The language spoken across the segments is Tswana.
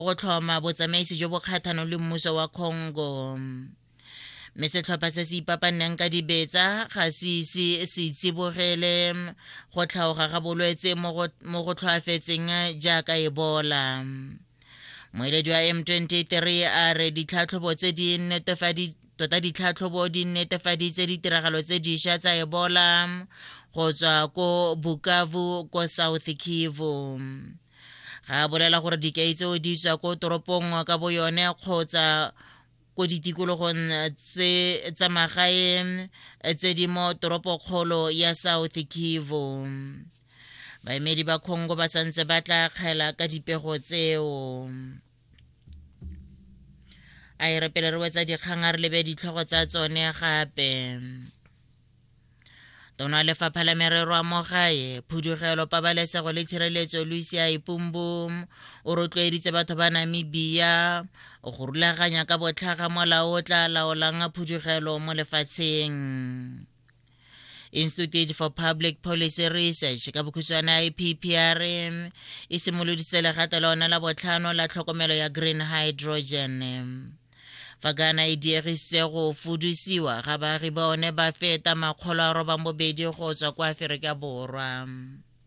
go tlhoma botsamaisi jo bo kgatlhanong le mmuso wa congo mme setlhopha se se ipapanneng ka dibetsa ga se ise se itsibogele go tlhaoga ga bolwetse mo go tlhoafetseng jaaka ebola moeledi wa m23 a re ditlhatlhobo tse di netefaditse tota ditlhatlhobo di netefaditse ditiragalo tse diša tsa ebola go tswa ko bukavu ko south kivu ga a bolela gore dikai tseo di tswa ko toropong ka bo yone kgotsa ko ditikologong tse tsa magaeng tse di mo toropokgolo ya south kivu baemedi ba congo ba santse ba tla kgela ka dipego tseo a e re pele re wetsa dikgang a re lebe ditlhogo tsa tsone gape tona lefapha la merero a mogae phudugelo pabalesego le tshireletso lucia ipumbu o rotloeditse batho ba namibia go rulaganya ka botlhaga molao o tla laolang phudugelo mo lefatsheng institute for public policy research ka bokhutshwana ippr e simoloditse legato lona la botlhano la tlhokomelo ya green hydrogen fa kana e diegisitse go fudusiwa ga baagi ba one ba feta makgolo a robang bobedi go tswa kwa aferika borwa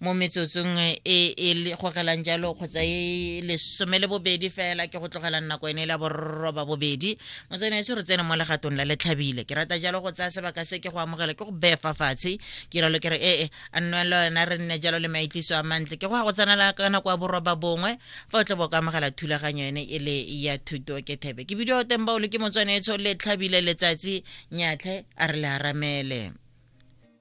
mo metsotsong e e gogelang jalo kgotsa e lesome le bobedi fela ke go tlogelang nako ene la borroba bobedi motsene ese re tsene mo legatong la letlhabile ke rata jalo go tsaya sebaka se ke go amogela ke go befa fatshe ke ralo ke re ee a nne le wena re nne jalo le maitliso a mantle ke go ya go tsenela ka nako ya borroba bongwe fa o tle bo ka amogela thulaganyo ene e le ya thuto ke thebe ke bidio teng baolo ke motswanetso letlhabile letsatsi nyatlhe a re le aramele